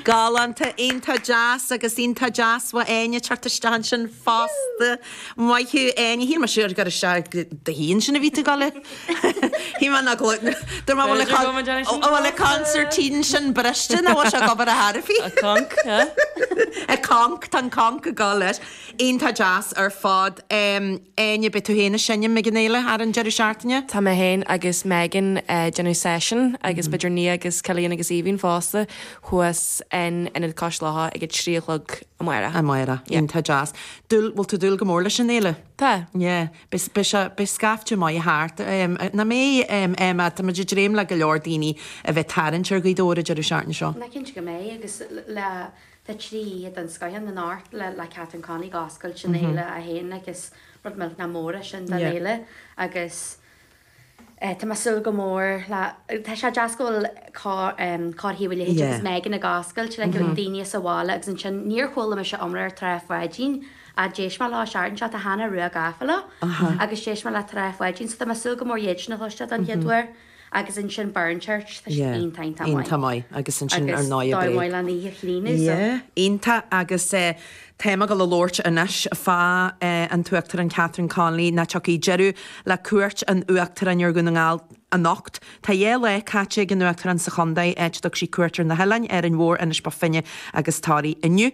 Galánta, iontach deas agus iontach deas uait Áine teacht isteach ansin fosta. Maith thú Áine. Shíl mé siúd gur isteach go do thí ansin a bhí tú ag dul leat. Shíl mé nach bhfuil, dúirt mé bhfuil a, bhfuil a concertina ansin briste nó bhfuil sé ag obair ar chor ar bith. Ag conc, tá an conc ag dul leis. Iontach deas ar fad. Áine, beidh tú féin ag seinm ag an fhéile thar an deireadh seachtaine? Tá mé féin agus Megan ag déanamh seisiún agus b'fhéidir Nia agus Cillian agus Aoibhín fosta thuas in Ionad Cois Locha ag a trí a chlog amárach. Amárach. Yeah. Iontach deas. Dúil, bhfuil tú ag dúil go mór leis an fhéile? Tá. Yeah. Beidh, beidh sé, beidh scaifte maith thart. Nach mbeidh, Emma? Tá muid ag dréim le go leor daoine a bheith ag tarraingt ar Ghaoth Dobhair an deireadh seachtaine seo. Tá mé cinnte go mbeidh agus le. Tá trí oíche den scoith insan Amharclann le Catherine Connolly ag oscailt an fhéile í féin agus rud millteanach mór é sin don fhéile agus tá mé ag súil go mór le, tá sé deas go bhfuil Cór Thaobh a' Leithid agus Megan ag oscailt le go mbeidh daoine as an bhaile agus ansin níor chuala mise iomrá ar Trá Pháidín ach d'éist mé leo an tseachtain seo, tá Hannah Rua gafa leo agus d'éist mé le Trá Pháidín so tá mé ag súil go mór iad sin a chloisteáil don chéad uair. agus ansin Burnchurch tá siad iontach iontach maith iontach maith agus ansin ar ndóigh Bréag an oíche chlíneadh so iontach agus tá mé ag dul a labhairt anois fá an tUachtarán Catherine Connolly nó tiocfaidh deireadh le cuairt an Uachtaráin ar Dhún na nGall anocht tá dhá lá caite ag an Uachtarán sa chontae áit a dtug sí cuairt ar na hOileáin Árainn Mhór Inis Bó Finne agus Toraigh inniu.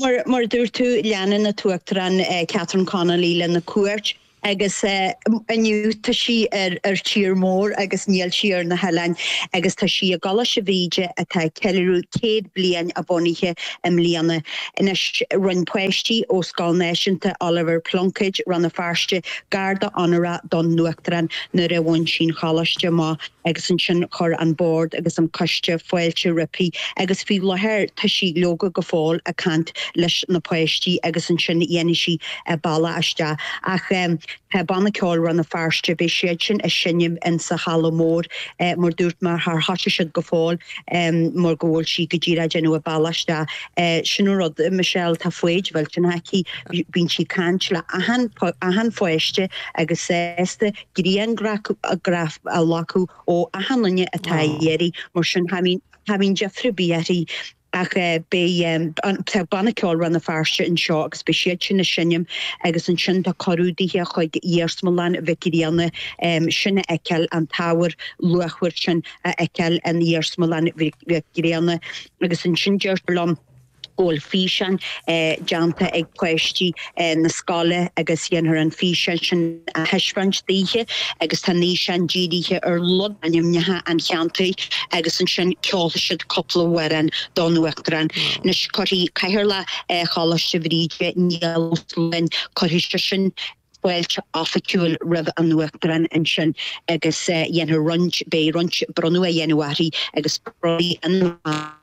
Mar a dúirt tú, leanann an tUachtarán Catherine Connolly lena cuairt agus inniu tá sí ar tír mór agus níl sí ar na hoileáin agus tá sí i gColáiste Bhríde atá ag ceiliúradh céad bliain a bhunaithe i mbliana. Anois rinne páistí ó Scoil Náisiúnta Oliver Plunkett, Rann na Feirste, garda onórach don Uachtarán nuair a bhain sí an Choláiste amach. agus ansin chuir an Bord agus an Coiste fáilte roimpi agus faoi láthair tá sí, leoga, go fóill ag caint leis na páistí agus ansin dhéanfaidh sí a bealach isteach. Ach tá Banna Ceoil Rann na Feirste, beidh siad sin ag seinm insa halla mór mar a dúirt mé char thosaigh siad go fóill mar go bhfuil sí go díreach ag déanamh a bealach isteach. Sin an rud, Michelle, tá foighid mhillteanach aici, bíonn sí ag caint le achan, achan pháiste agus sásta. griangraf a ghlacadh ó achan duine atá ag iarraidh, mar sin cha bhíonn deifre ar bith uirthi ach beidh Banna Ceoil Rann na Feirste anseo agus beidh siad sin ag seinm agus ansin tá cuireadh daoithe chuig Iarsmalann Mhic Grianna sin a fheiceáil an t-ábhar luachmhar sin a fheiceáil in Iarsmalann Mhic Grianna agus ansin deirtear liom go bhfuil físeáin déanta ag páistí na scoile agus dhéanfar an físeán sin a thaispeáint daoithi agus tá an físeán dírithe ar logainmneacha an cheantair agus ansin ceolfaidh siad cúpla amhrán don Uachtarán. Anois cuirfidh Cathaoirleach Choláiste Bhríde, Niall Ó Súilleabháin, cuirfidh seisean fáilte oifigiúil roimh an Uachtarán ansin agus dhéanfar roinnt, beidh roinnt bronnadh á dhéanamh arís agus bronnfaidh an.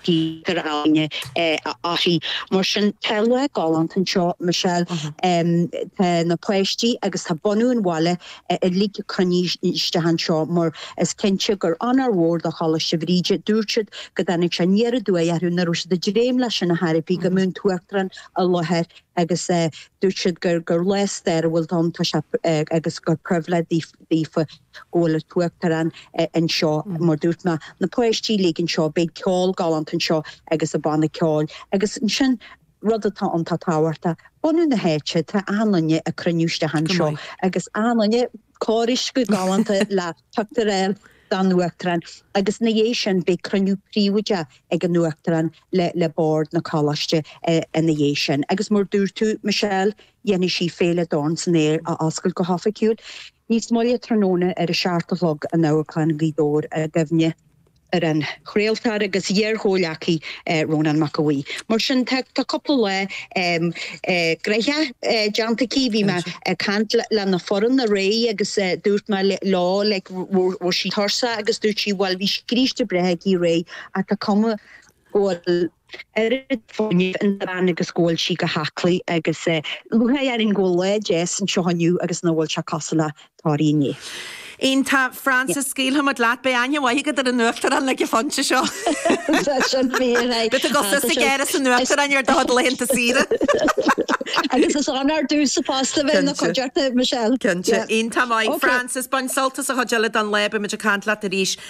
Peter Aine e a Otti. Mar sin tá lá galánta anseo Michelle. Tá na páistí agus tá bunadh an bhaile uilig cruinnithe isteach anseo mar is cinnte gur onóir mhór do Choláiste Bhríde. Dúirt siad go dtáinig sé aniar aduaidh orthu nó ní raibh siad ag dréim leis sin ar chor ar bith go mbeadh an tUachtarán i láthair agus dúirt siad gur lá stairiúil do Rann na Feirste agus gur pribhléid daofa go bhfuil an tUachtarán anseo, mar dúirt mé, na páistí uilig anseo, beidh ceol galánta anseo agus an banna ceoil agus ansin, rud atá iontach tábhachtach, bunadh na háite, tá achan duine ag cruinniú isteach anseo agus achan duine, cóirithe go galánta le fáilte a chur roimh an Uachtarán agus ina dhiaidh sin, beidh cruinniú príobháideach ag an Uachtarán le le Bord an Choláiste ina dhiaidh sin agus mar dúirt tú, Michelle, dhéanfaidh sí Féile Dorn san Aer a oscailt go hoifigiúil. Níos moille tráthnóna, ar a seacht a chlog, in Amharclann Ghaoth Dobhair, i gcuimhne ar an chraoltóir agus iar-chomhghleacaí Rónán Mac Aodha Bhuí. Mar sin, tá cúpla lá gnoitheach déanta aici. Bhí mé ag caint lena foireann aréir agus dúirt mé leo like an bhfuil sí tuirseach agus dúirt sí bhuel bhí scríste breá aici aréir ach tá cuma go bhfuil oiread fuinnimh sa bhean agus go bhfuil sí go haclaí agus lúcháir orainn go bhfuil lá deas anseo inniu agus nach bhfuil sé cosúil le Toraigh inné. Iontach, Frances, scaoilfimid leat. Beidh aithne mhaith agat ar an Uachtarán ag an phointe seo. Tá sin fíor. Beidh tú ag dul go hÁras an Uachtaráin ar do chuid laethanta saoire. Agus is ann ar dtús sa post a bheith ina cuideachta Michelle. Cinnte. Iontach, Frances, bain sult as an chuid eile don lá, beimid ag caint leat arís.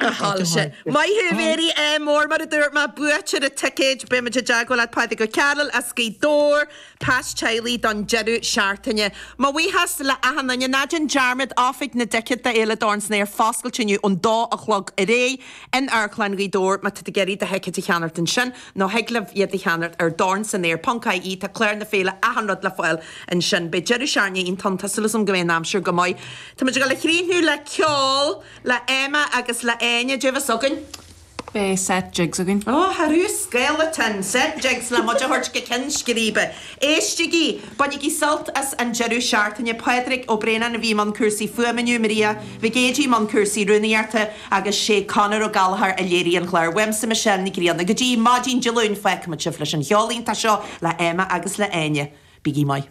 a shoilse. Maith thú, Mary M. Mar a dúirt mé, buaiteoir na dticéad, beimid i dteagmháil leat Pádraig Ó Cearaill as Gaoth Dobhair, Pas Teaghlaigh don deireadh seachtaine. Mo bhuíochas le achan nduine. Ná déan dearmad, Oifig na dTicéad d'Fhéile Dorn san Aer foscailte inniu ón dó a chlog ar aghaidh in Amharclann Ghaoth Dobhair. Má tá tú ag iarraidh do thicéad a cheannacht ansin, nó thig libh iad a cheannacht ar dornsanaer.ie, tá clár na féile achan rud le fáil ansin. Beidh deireadh seachtaine iontach ann, tá súil agam go mbeidh an aimsir go maith. Táimid ag dul a chríochnú le ceol. le Emma agus le Áine abhus againn. beidh set jigs againn. Oh, ar fhiú scaoll le teann. Set jigs le muid a thabhairt go ceann scríbe. Éistígí! Bainigí sult as an deireadh seachtaine. Pádraig Ó Braonáin a bhí i mbun cúrsaí fuaime inniu, Maria Mhic Géidigh i mbun cúrsaí rúnaíochta agus sé Conor Ó Gallachóir a léirigh an clár uaimse, Michelle Nic Grianna. Go dtí maidin Dé Luain, fágfaimid sibh leis an cheol iontach seo le Emma agus le Áine. Bígí maith.